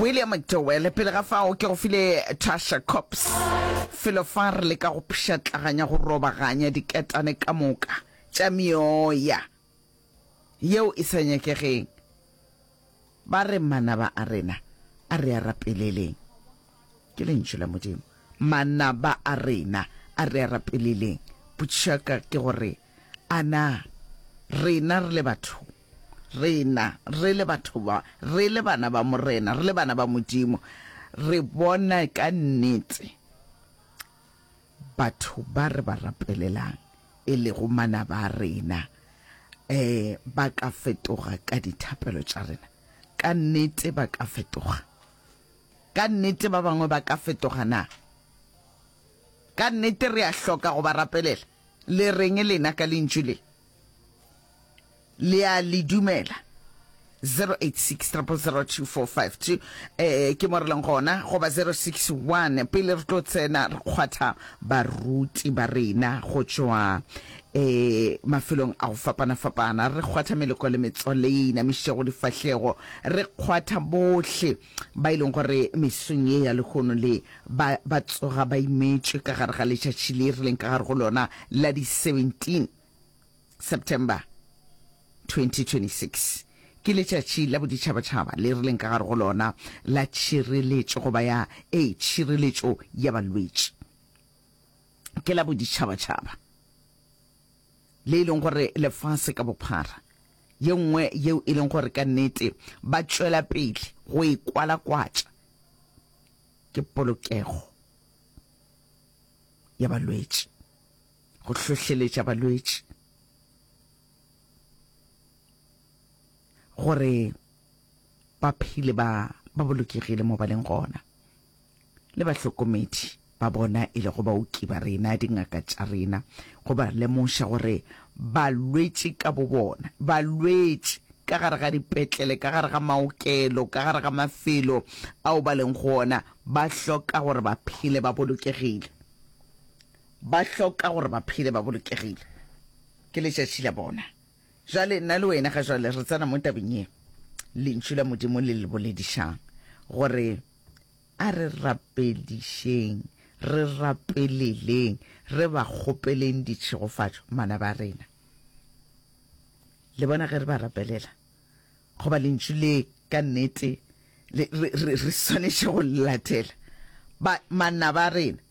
William McDowell, pele ga fao ke go file Tasha Cops felo fa re leka go pšhatlaganya go robaganya diketane ka moka tša meoya yeo e sa nyakegeng. Ba re, Manaba a rena, a re a rapeleleng. Ke Lentšu la Modimo. Manaba a rena, a re a rapeleleng. Potšišo ya ka ke gore, A na rena re le batho, rena re le batho ba, re le bana ba Morena, re le bana ba Modimo, re bona ka nnete batho ba re ba rapelelang, e lego manaba a rena, um ba ka fetoga ka dithapelo tša rena? Ka nnete ba ka fetoga. Ka nnete ba bangwe ba ka fetoga na? Ka nnete re a hloka go ba rapelela. Le reng lena ka lentšu le? Le a le dumela? 0860002452 eh ke mo re leng gona goba 061 pele re tlo tsena re kgwatha baruti ba rena go tšwa eh mafelong a go fapana fapana re kgwatha meleko le metswaleina mešego difahlego re kgwatha bohle ba e leng gore mesong ye ya lehono le ba, ba tsoga ba imetšwe ka gare ga letšatši le re leng ka gare go lona la di 17 September 2026 ke letšatši la boditšhabatšhaba le re leng ka gare go lona la tšhireletšo goba ya e tšhireletšo ya balwetši ke la boditšhabatšhaba le e leng gore lefase ka bophara, ye nngwe yeo e leng gore ka nnete ba tšwela pele go e kwalakwatša, ke polokego ya balwetši, go hlohleletša balwetši gore ba phele ba ba bolokegile mo ba leng gona. le bahlokomedi ba bona e lego baoki ba rena, dingaka tša rena, go ba lemoša gore balwetši ka bobona, balwetši ka gare ga dipetlele, ka gare ga maokelo, ka gare ga mafelo ao ba leng go ona, ba hloka gore ba phele ba bolokegile. Ba hloka gore ba phele ba bolokegile. Ke letšatši la bona. Jwale nna le wena ga jwale re tsena mo tabeng ye Lentšu la Modimo le le boledišang gore A re rapedišeng, re rapeleleng, re ba kgopeleng ditšhegofatšo manaba a rena. Le bona ge re ba rapelela, goba lentšu le ka nnete re swanetše go le latela, ba, manaba a rena.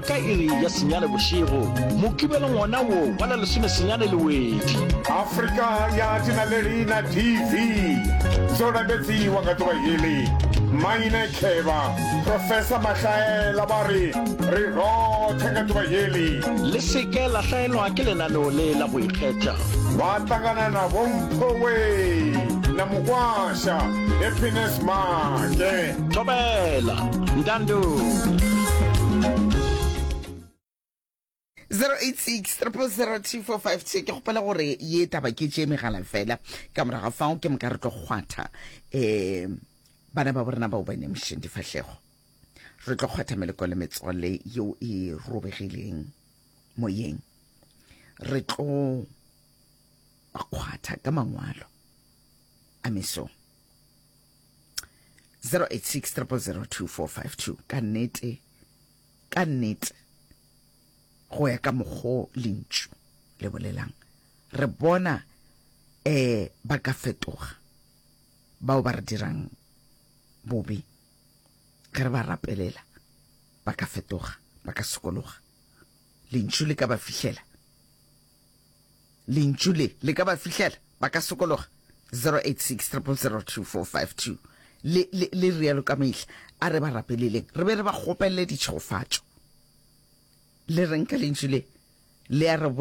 Ka iri ya senyane bošego, Mokibelo ngwana wo wa la lesome senyane le wedi. Afrika ya Tinalerina TV, zo rabetsi wa nga tuba hili, Maine Kheba, Professor Mahlaela ba ri, ri rothe nga tuba hili. Le se ke la hlaelwa ke lenaneo le la go ikgetha. Ba tangana na Bo Mpho Wee na Mukwasha, Happiness Make. thobela ntando 0863002452 ke gopela gore ye taba ke tše megala fela ka moraga fao ke moka re tlo kgwatha um bana ba borena bao ba nemošeng difahlego re tlo kgwatha meleko le metswalle yeo e robegileng moyeng re tlo kgwatha ka mangwalo a mesong 0860002452 ka nnete ka nnete go ya ka mokgo lentšu le bolelang re bona eh ba ka fetoga bao ba re dirang bobe ge re ba rapelela ba ka fetoga ba ka sokologa lentšu le ka ba fihlela Lentšu le le ka ba fihlela, ba ka sokologa. 086 0002452 Le rialo ka mehla, a re ba rapeleleng, re be re ba kgopelele ditšhegofatšo. Le reng ka lentšu le? Le a re.